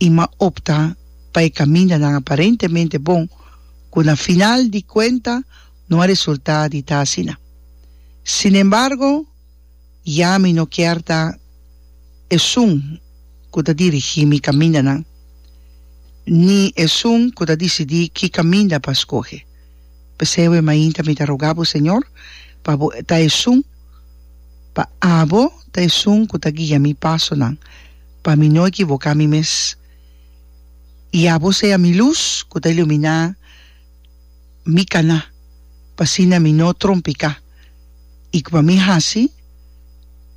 i ma opta pa e kamindanan aparentemente bon ku na final di kuenta no a resultá di ta asina. Sinembargo, ya mi no kier ta esun ku ta dirigí mi kamindanan, ni esun ku ta disidí ki kaminda pa skohe. P'esei awor mainta mi ta rogá bo, Señor, pa bo ta esun, pa abo ta esun ku ta guia mi pasonan, Pa mi no ekivoká mi mes. I abo sea mi lus ku ta iluminá mi kaná, pa asina mi no trompiká, i ku pa mi hasi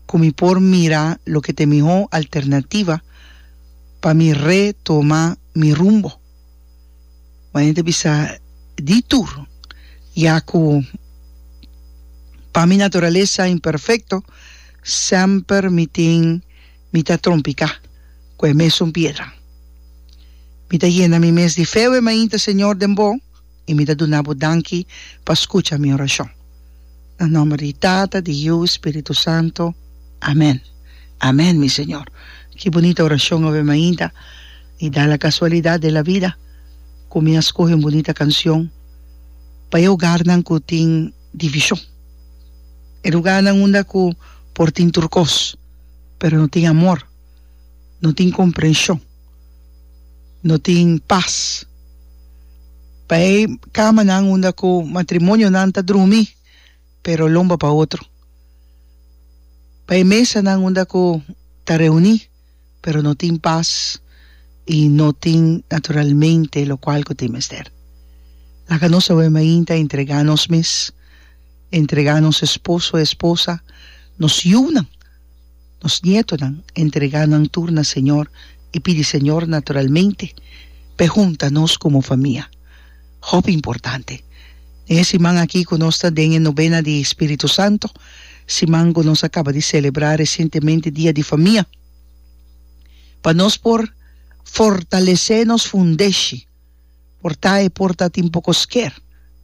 ku mi por mira loke ta e mihó alternativa pa mi retoma mi rumbo. Maña ta bisa di tur, ya ku pa mi naturalesa imperfekto semper mi tin. mi ta trompicá cu e mesun piedran. Mi ta yena mi mes di fe we mainta, Señor, den Bo, i mi ta duna Bo danki pa scucha mi oracion. Na nomber di Tata, di Yiu, Spiritu Santo. Amen. Amen, mi Señor. Ki bunita oracion awe mainta! I da la casualidad den la vida cu mi a scoge un bunita cancion pa e hogarnan cu tin division, e lugarnan unda cu por tin tur cos. pero no tin amor, no tin komprenshon, no tin pas. Pa e kamanan unda ku matrimonionan ta drumi pero lomba pa otro, pa e mesanan unda ku ta reuní pero no tin pas i no tin naturalmente lokual ku tin mester. Laga nos awe mainta entregá nos mes. Entregá nos esposo, esposa, nos yunan, nos nietonan, entregá nan tur na Señor i pidi Señor naturalmente pa e hunta nos komo famia. Hopi importante! Den e siman aki ku nos ta den e Nobena di Spiritu Santo, siman ku nos a kaba di selebrá resientemente Dia di Famia, pa nos por fortalesé nos fundeshi, Por ta e por ta tin poko sker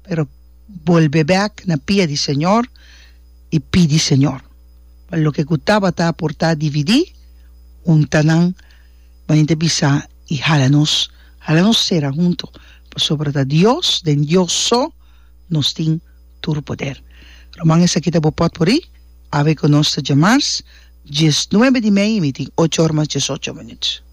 pero bolbe bek na pia di Señor y pidi Señor pa loke cu tabata por ta dividi hunta nan manera ta bisa y hala nos hala nos cera hunto pasobra ta Dios den Dios so nos tin tur poder Roman esaki ta bo pot por y awe cu nos ta djamars dies nuebe di mei y mi tin ocho or mas dies ocho minut.